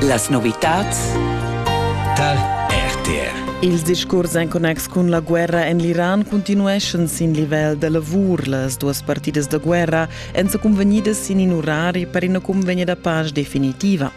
Las novitads tar RTR. Ils discurs en connex cun la guerra en l'Iran continueschan sin livel da lavur. Las duas partidas da guerra èn sa cunvegnidas sin in orari per ina cunvegna da pace definitiva.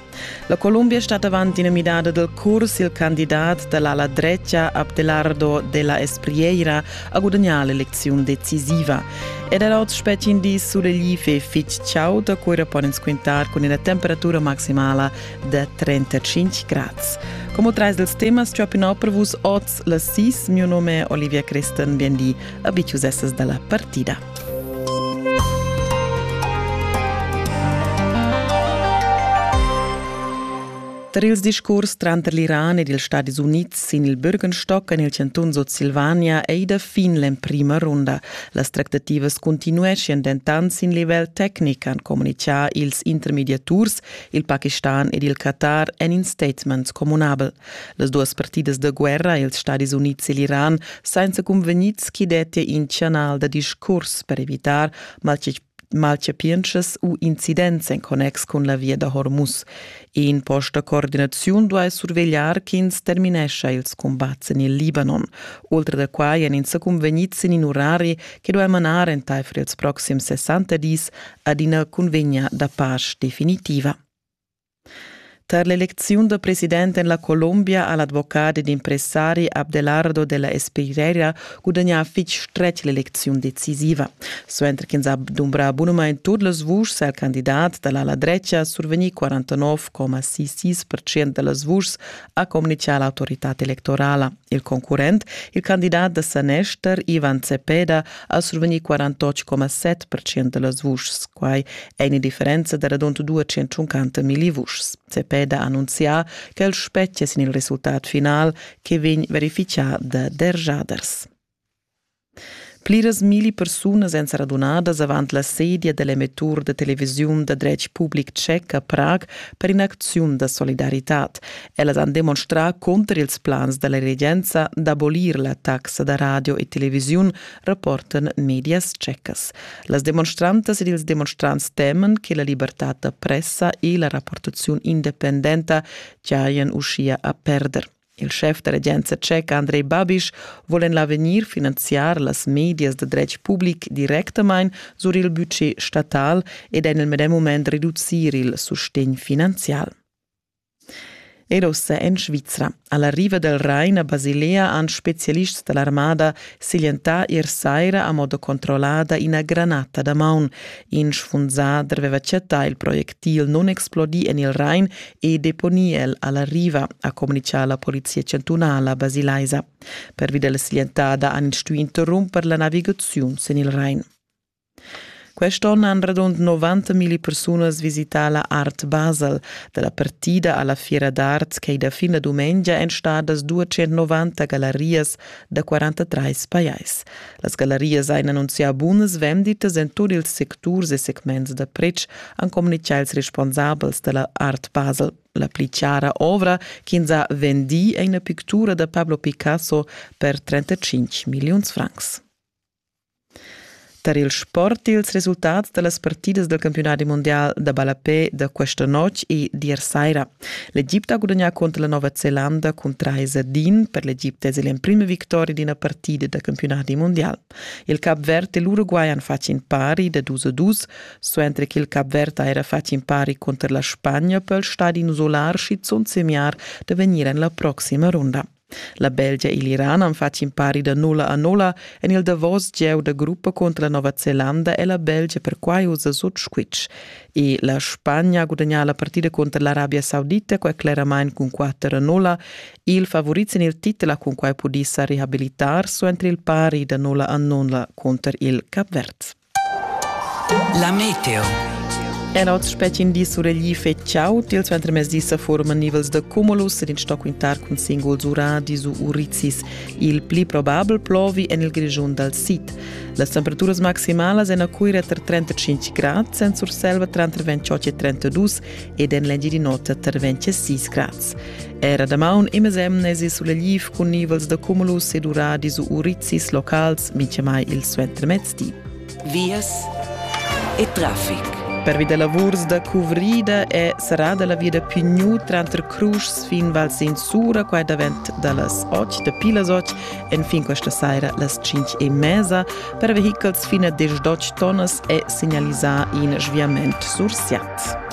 La Columbia stat avant ina midada del curs. Il candidat da l'ala drecha Abdelardo de la Espriera ha gudagnà l'elecziun decisiva ed era oz spetti in di sulegl e fitg chaud da cura pon ins quintar cun ina temperatura maximala da 35 grads. Como trais dels temas ciopinò per vus oz las sis, mio nome è Olivia Christen, bienveni a Biciusessas dalla partida. Tar ils discurs tranter l'Iran ed ils Stadis Unids sin il Bürgenstock en il chantun Sutsilvania ei da fin l'emprima runda. Las tractativas continueschian dentant sin livel tecnic, han communitgà ils intermediaturs, il Pakistan ed il Qatar en in statement communabel. Las duas partidas da guerra, ils Stadis Unids e l'Iran, sainza cunvegnids ch'i dettia in chanal da discurs per evitar maltg malchapientschas u incidents en connex cun la via da Hormuz. E in post da coordinaziun duai survegliar ch'ins terminescha ils cumbats en il Libanon. Oltre da quai èn ins cunvegnids sin in urari che duai manar entaifer ils proxims 60 dis ad ina cunvegna da pace definitiva. Tar l'elecziun da president en la Colombia ha l'advocat ed impressari Abdelardo della Espeirera gudagnà fitg stretg l'elecziun decisiva. Suenter ch'ins ha dumbrà bunamain tut las vuschs ha il candidat da l'ala drecha survegnì 49,66% da las vuschs, ha communitgà l'autoritad electorala. Il concurrent, il candidat da sanester Ivan Zepeda, ha survegni 48,7% da las vuschs. Quai è ina differenza da radund 250 milli vuschs. Zepeda ha annunzià che el spettia sin il resultat final che vegn verifichà da derjaders. Pliras milli persunas èn sa radunadas avant la sedia da l'emettur da televisiun da dretg public tschec a Prag per in'acziun da solidaritad. Ellas han demonstrà cunter ils plans da la regenza d'abolir la taxa da radio e televisiun, rapportan medias tschecas. Las demonstrantas ed ils demonstrants teman che la libertad da pressa e la rapportaziun independenta giajan uschia a perder. Il schef da regenza tscheca Andrei Babiš vul en l'avegnir finanziar las medias da dretg public directamain sur il budget statal ed en il medem mument reducir il sustegn finanzial. Era ussa en Svizra. Alla riva del Rain a Basilea han specialists dall'armada siglientà ier saira a modo controllada ina granata da maun. In sfunzà aveva chattà il projectil non explodì en il Rain e deponì el a la riva, ha communitgà la polizia chantunala basilaisa. Pervi da la siglientada han ins stuì interrumper la navigaziun sin il Rain. Quest onn han radund 90.000 persunas visità la Art Basel. Da la partida alla Fiera d'art ch'ei da fin la dumengia èn stadas 290 gallarias da 43 pajais. Las gallarias ein annunzià bunas venditas en tut ils secturs e segments da pretsch, han communitgà ils responsabels dalla Art Basel. La pli chiara ovra ch'ins ha vendì è ina pictura da Pablo Picasso per 35 milliuns francs. Tar il sport ils resultats da las partidas del campionati mondial da ballapé da questa notg e d'ier saira. L'Egipte ha gudagnà contro la Nova Zelanda cun 3 din per l'Egipte es l'emprima victoria d'ina partida da campionati mondial. Il Cap Verd e l'Uruguay han fatg in pari da dus a dus, suenter che il Cap Verd ha era fatg in pari contro la Spagna per il stadi isolar schizunt semiar da vegnir en la proxima ronda. La Belgia e l'Iran han fatg in pari da nulla a nulla en il davos gieu da gruppa contro la Nova Zelanda e la Belgia perquai ussa sut squitsch. E la Spagna ha gudagnà la partida contro l'Arabia Saudita qua cleramain cun 4 a nulla. Il favorit sin il titel ha cunquai pudì sa rehabilitar su entri il pari da nulla a nulla contro il Cap Verd. La meteo. Era oz spetgin di suregli fetschau tils ventermezdi sa forman nivels da cumulus ed in sto quintar cun singuls ura disu urizis. Il pli probabel plovi en il Grischun dal sid. Las temperaturas maximalas en a Cuira tra 35 grad, en Surselva tra 28 e 32 ed en l'Engi di notte tra 26 grad. Era da maun imes emnesi sulegli cun nivels da cumulus ed ura disu urizis locals, mintgamai il suentermezdi. vias e traffic. Pervi da lavurs da cuvrida è serrada la via da Pigniu tranter Cruschs fin Val Sin Sura, qua davent da las 8, dapi las 8, enfin questa saira las 5 e mesa, per vehichels fin a 18 tonnas è signalisà in sviament sursiat.